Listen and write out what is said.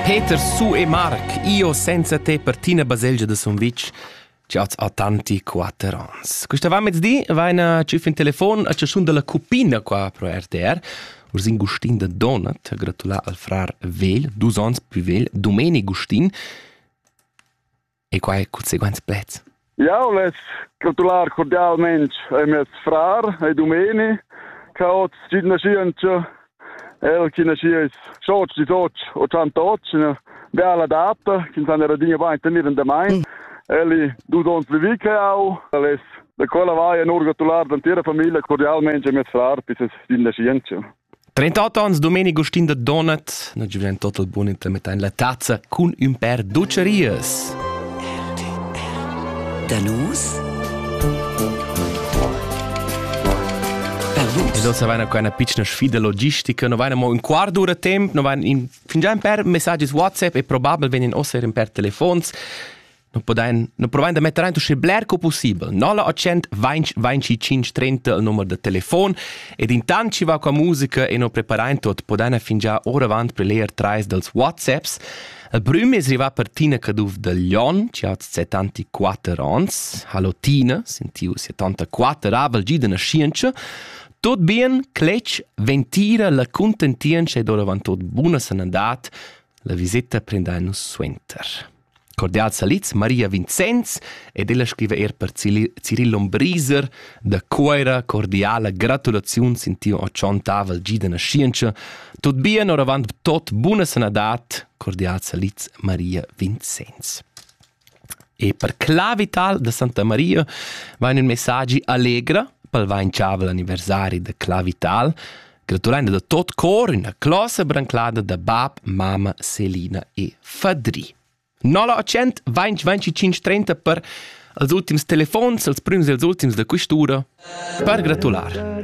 Peter su e Marc, io senza te per tina baselgia de Sumvitg, che oz ha tanti quatter ans. Questa va mezdi va ina cif in telefon a ciascun della cupina qua pro RTR. Ursin Gustin de Donat ha gratulà al frar vegl, dus ons più vegl, Domeni Gustin, E quai cun seguents pleds. Jau less gratular cordialmain a mes frar e dumeni, che ha oz tgi naschientscha, el chi naschies soc, disoc, ottantoc, üna bella data, ch'ins han era dinja bain tenir in damain. Mm. Eli dus ons vivi che au, les da quella vai en urgatular d'antira famiglia cordialmente a mes frar, bis es din nascientscha. 38 ans Domenico Stin da Donat, na giuven total bun intermetta in la tazza cun ün per docerias. Danus Lo savana qua una piccina sfida logistica, no vaina mo un quart d'ura temp, no vaina in, fingià in per messaggi su WhatsApp e probabile vegnan ossere in per telefons. nu podain nu provain da metter aint uschè bler co pussibel. 0800 20 25 30 il numer da telefon ed intant chi va qua musica e nu preparain tot podaina fingià oravant per leer trais dals WhatsApps. Il prüm es rivà per Tina Caduff da Lyon, chi ha 74 ans. Hallo Tina, sentiu 74 avel gida naschientscha. Tot bien, cletg, ventira, la contentientscha ed oravant tot buna sanadat. La visita prendain nus suenter. Cordial salids Maria Vincenz ed ella scriva er per Ciril Lombriser da Cuira cordiala gratulaziuns in tiu tschontavel gi da naschientscha. Tot bien oravant tot buna sanadad, cordial salids Maria Vincenz. E per Clavital da Santa Maria va in messaggi allegra pel vainchavel anniversari de Clavital gratulando da tot cor üna closa branclada da bab, mama, Selina e Fadri. 0800 20 25 30 per els ultims telefons, els prüms e els ultims da quest'ura per gratular.